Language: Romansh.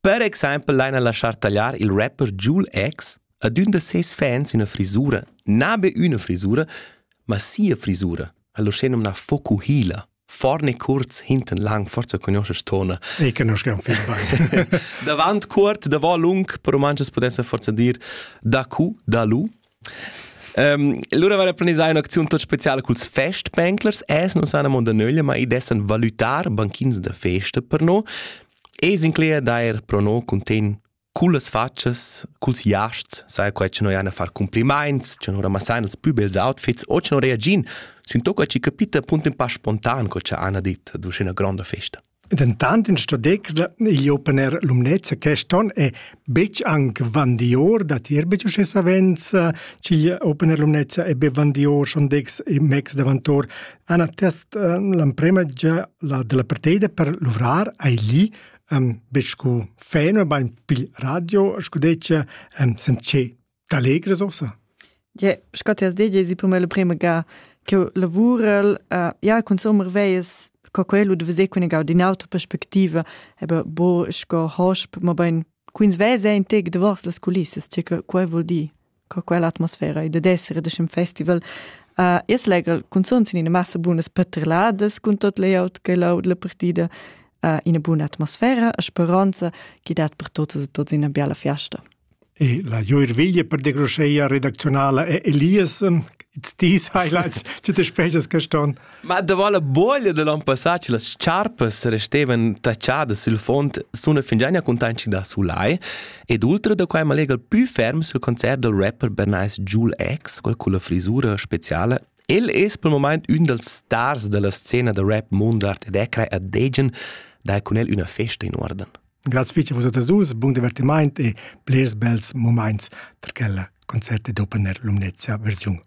Per exempel laina laschar tagliar il rapper Joule X ad ün da seis fans üna frisura, na be üna frisura, ma sia frisura, al uschenumnà Fokuhila. Vorne kurz, hinten lang, forza conosces tona. E conosco un film bain. Davant cuort, davant lung, per romances potessan forza dir da cu, da lu. Um, lura var planisà un'acziun tot speciale culs festbänklers, es non sana monda nöglia, ma i dessan valutar banchins da festa per no. Es incler d'eir pro no cuntegn cullas fatschas, culs jasts, saja quai cha noi hain a far cumplimaints, cha no ramassain ils plü bels outfits o cha no reagiin sün to co chi capita punto ün pa spontan co cha Anna dit ad üschina gronda festa. Dentant in sto decr igl opener Lumnezia quest on è betg anc vandior da tier betg uschè savens ch'igl opener Lumnezia è be vandior schon dex e mex davantor han attest ehm, l'emprema gia la della partida per luvrar ai lì ehm, be sco feno, ma in pil radio, sco dice, ehm, sence t'allegres ossa. Ja, sco ti has detto, si per me la prima ga che lavurel, uh, ja, con sommer veies co quello de vese con in auto perspectiva, aber bo sco hosp, ma ben quins vese in tec de vos las culissas, che quai vuol dir. co quell'atmosfera ei dad esser e dess in festival uh, es legel cunzun sin ina massa bunas patreladas cun tot layout che laud la partida uh, ina buna atmosfera e speranza che dat per totes e tots ina biala fiasta E la Joirviglia per de Groscheia redactionala è Elias, It's Tea Highlights, zu de Speches gestorn. Ma davant la boglia da l'on passà che las charpas restevan tachadas sul fond suna fingià cuntanschida a sulai ed ultra da quai malega plü ferm sul concert dal rapper bernais Joel X quel culla frisura speciala El es pel momaint ün dals stars da la scena da rap Mundart ed è crei a Degen dai cun el üna festa in uorden. Graz fitch vos atas dus, bun divertimaint e blers bels momaints per quella concert ed opener Lumnezia versiun